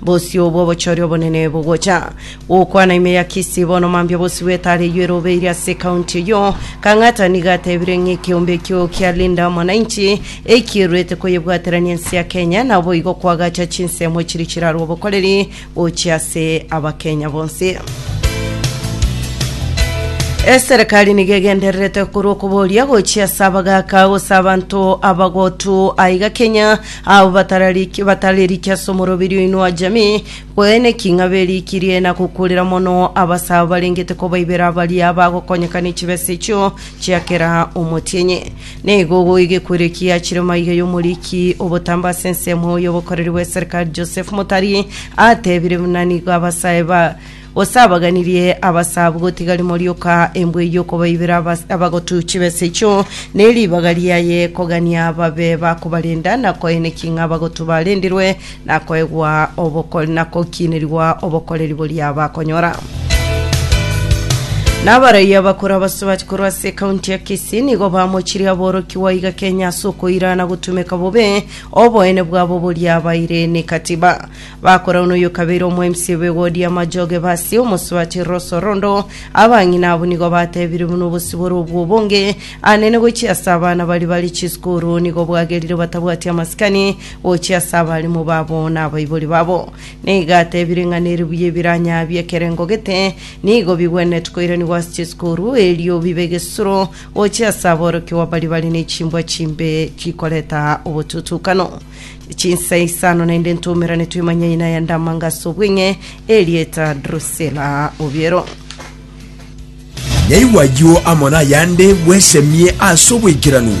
Bosio bw'obochori obonene bogocha gokwana ime ya Kisii bono mambia bosio bw'etare eyio erobeire ase ekaunti eyio. Kang'ata nigo atebire ng'a ekeombe ekio kia Linda Mwananchi ekiruete koyebwaterania ense ya Kenya naboigo koagacha chinsemo chiria chirarwa obokoreri gochia ase Abakenya bonsi. Eserekari nigo egendererete korwa okoboria gochia ase abagaka gose abanto abagotu aiga Kenya Abwo batarariki- batareriki ase omorobiri oino wa jamii, kweneki ng'a berikirie na gokurera mono abase abo barengete kobaibera baria bagokonyeka ne chibesa echio chia kera omotienyi. Nigo goigekwerekia achire maiga y'omoriki obotambe ase ensemo y'obokoreri bw'eserikari Joseph Motari atebire buna nigo abasae ba Gose abaganirie abasabu gotiga rimo rioka embwe eyio okobaibera abas- abagotu chibesa echio, ne ribaga riaye kogania babe bakobarenda, na koenekia ng'a abagotu barendirwe, na koegwa oboko- na kokiinerigwa obokoreri boria bakonyora. Na abaraia abakoro abasubachi korwa ase ekaunti ya Kisii nigo bamochirie aborokigwa iga Kenya ase okoira na gotumeka bobe oboene bwabo boria baire ne Katiba. Bakorauna oyokabeire omoemisia bw'egoodi y'amajooge b'Asia, omosubati Rosorondo. Abang'ina abwo nigo batebirie buna obosio bore obwo obonge, anene gochia ase abana baria bare chisukuru, nigo bwagerire batabwati amasikani gochia ase abalimu babo na abaibori babo. Nigo atebire ng'a nere buya ebiranya bi'ekerengo gete nigo bigwenerete koiranigwa ase chisukuru, erio bibe egesuro gochia ase aborokigwa baria bare ne chimbwa chimbe chikoreta obotutukano. chinsa isano naende ntumerane twimanye ina ya ndamangaso obweng'e erieta drusela obiero Nyaigwa ayio amo nayande bwesemie ase oboikeranu.